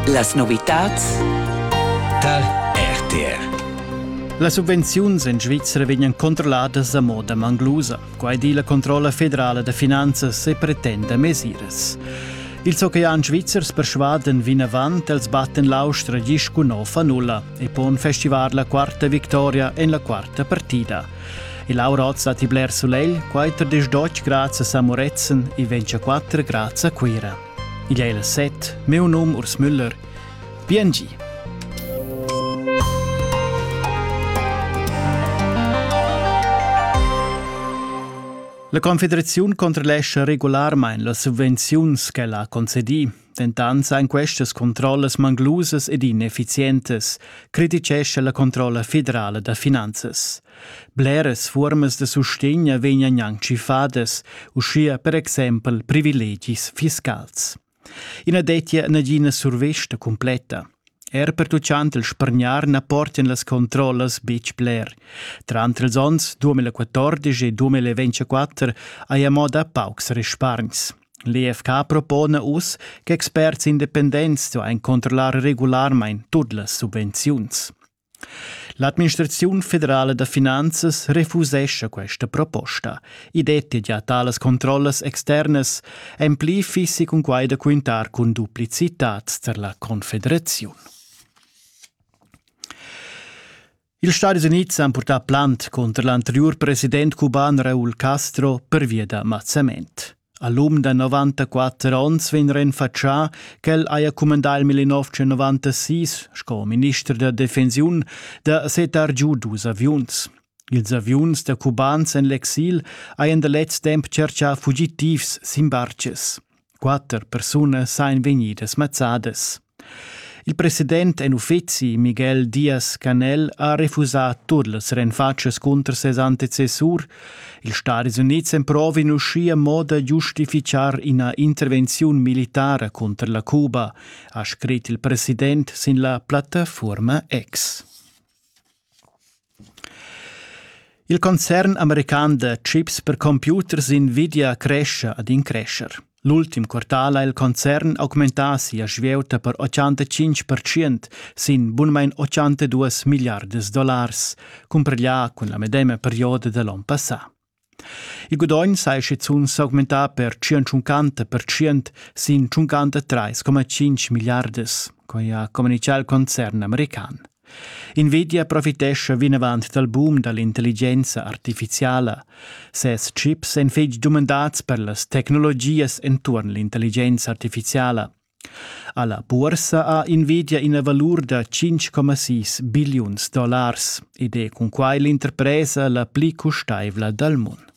Las novitads dal RTR las subvenziuns en Svizra vegnan controlladas a moda manglusa. Quai di la controlla federala da finanzas e pretenda mesiras. Ils oceans svizzers persvadan vinavant els batten l'austra gis cun nova nulla e pon festivar la quarta victoria en la quarta partida. E Laura hoz dat i bler sulegl, quater desdotg grazias a Moretzen e ventscha quatter grazie a Cuira. Igl è il set, meu num Urs Müller. Biengi! La Confederaziun controllescha regularmain las subvenziuns ch'ella ha concedì Dentant sain questas controllas manglusas ed ineffizientas, criticescha la controlla federala da finanzas. Bleras fuormas da sustegn vegnan gnanc tschiffadas, uschia per exempel privilegis fiscals. I na dettia nagina survesta cumpletta. Er pertuccant il spargnar na portian las controllas betg bler. Tranter els onns 2014 e 2024 haja mo da paucs respargns. L'EFK propona uss che experts independents stuain controllar regularmain tut las subvenziuns. L'administraziun federala da finanzas refusescha questa proposta. I dettia gia talas controllas externas en pli fissi cun quai da quintar cun duplicitads tar la Confederaziun. Ils Stadis Unids han purtà plant cunter l'anteriur president cuban Raúl Castro pervia da mazzament. A l'um da 94 onns vegn renfatschà ch'el haja cumandà il 1996 sco minister da defensiun da setar giu dus aviuns. Ils aviuns da cubans en l'exil hajan da lez temp tscherchà fugitivs sin bartgs. Quatter persunas ein vegnidas mazzadas. Il president en uffeci Miguel Diaz-Canel ha refusà tut las renfatschas cunter ses antecessur. Ils Stadis Unids emprovin uschia mo da giustifichar ina intervenziun militara cunter la Cuba, ha scrit il president sin la plattafuorma X. Il concern american da chips per computers invidia crescha ad increscher. L'ultim quartal ha il concern augmentà sia svieuta per 85% sin bunmain 82 milliardas dollars, cumpareglià cun la medema perioda da l'onn passà. Il gudogn saja schizunt s'augmentà per tschientschunchanta percent sin tschuncanta trais coma tschinch milliardas, quai ha communitgà il concern american. Nvidia profitescha vinavant dal boom da l'intelligenza artifiziala. Ses chips èn fitg dumandads per las tecnologias enturn l'intelligenza artifiziala. Alla buorsa ha invidia ina valur da 5,6 billiuns dollars ed è cun quai l'interpresa la pli custaivla dal mund.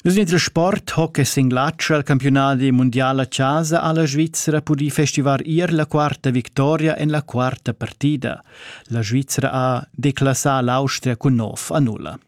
Nus in sport hockey singlatsch al campiunadi mundial a casa ha la Svizzera pudì festivar ier la quarta victoria en la quarta partida. La Svizzera ha declassà l'Austria cun nov a nulla.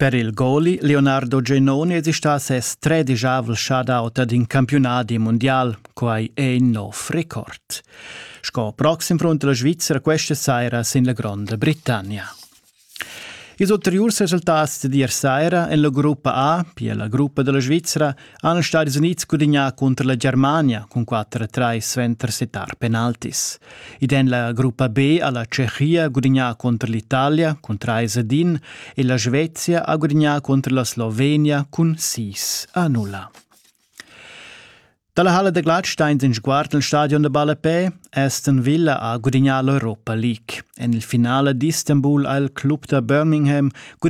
Per il goli Leonardo Genoni es istà ses tredigiavel shutout ad in campiunadi mundial, quai è in nov record. Sco proxim front la Svizra questa saira sin la Gronda Britannia. Ils ulteriurs resultats d'ir saira en la gruppa A, pia la gruppa della Svizra, han Stadis Unids gudagnà cunter la Germania cun 4-3 suenter settar penaltis. Id en la gruppa B ha la Tschechia gudagnà cunter l'Italia cun 3 ad 1 e la Svezia ha gudagnà cunter la Slovenia cun 6 a 0. Dalla Halle da Gladsteins in sguard nel stadion da Ballapè, Aston Villa ha gudagnà l'Europa League. En il finale d'Istanbul ha il club da Birmingham gudagnà